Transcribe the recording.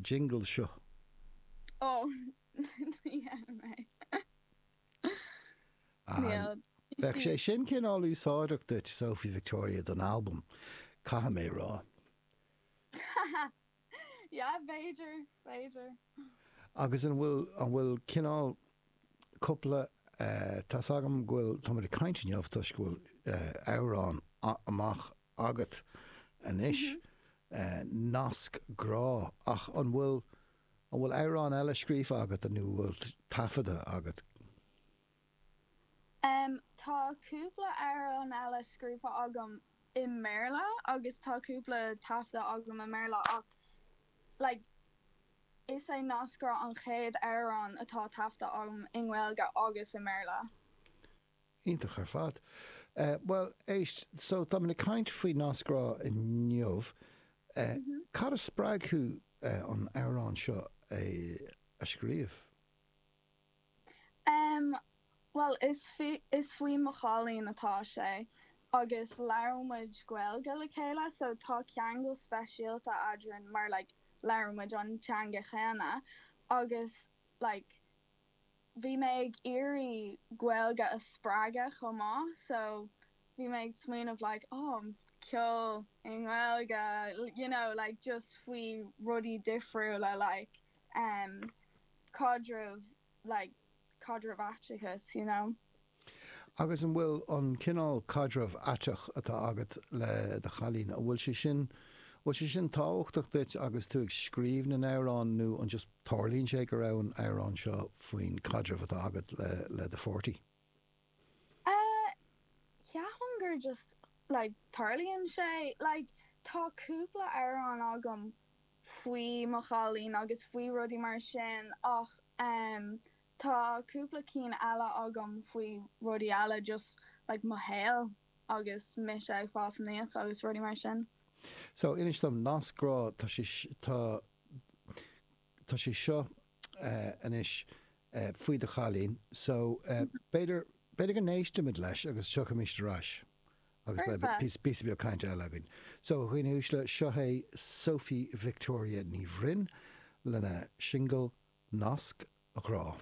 jingle seo. Oh ní dhéanfaidh mé. Níl. Bheadh sé sin cineál úsáideach duit Sophie Victoria don albam, caithfidh mé a rá. Yeah, b'fhéidir, b'fhéidir. Agus an bhfuil, an bhfuil cineál cúpla, eh, tá's agam go bhfuil, tá muid ag caint inniu toisc go bhfuil, eh, amhrán amach agat anois. Nasc grá. Ach an bhfuil, an bhfuil amhrán eile scríofa agat nó bhfuil taifeadta agat? Tá cúpla amhrán eile scríofa agam i mBéarla agus tá cúpla taifeadta agam i mBéarla ach like is é Nasc Grá an chéad amhrán atá taifeadta agam i nGaeilge agus i mBéarla. Iontach ar fad. Bhuel, éist, so tá muid ag caint faoi Nasc Grá inniu. Cad a spreag thú an amhrán seo a scríobh? Em, bhuel, is faoi mo chailín atá sé agus labhrann muid Gaeilge le chéile so tá ceangal speisialta eadrainn mar like labhrann muid an teanga chéanna agus like Bhí mé ag iarraidh Gaeilge a spreagadh chomh maith so bhí mé ag smaoineamh like oh ceol i nGaeilge you know like just faoi rudaí difriúla like em caidrimh like caidrimh aiteachais you know. Agus an bhfuil an cineál caidreamh aiteach atá agat le do chailín, an bhfuil sé sin, bhfuil sé sin tábhachtach duit agus tú ag scríobh na n-amhrán nó an just tarlaíonn sé go raibh an amhrán seo faoin caidreamh atá agat le do pháirtí? Eh, ceapaim gur just like tarlaíonn sé. Like tá cúpla amhrán agam faoi mo chailín agus faoi rudaí mar sin ach em Tá cúpla cinn eile agam faoi rudaí eile just like mo shaol agus mise ag fás aníos agus rudaí mar sin. So inis dom nasc grá tá sé tá tá sé seo anois faoi do chailín so b'fhéidir b'fhéidir go n-éistfimid leis agus tiocfaimid ar ais Agus beidh píosa beag cainte eile againn. So, a dhaoine uaisle, seo é Sophie Victoria Ní Bhroin lena singil Nasc Grá.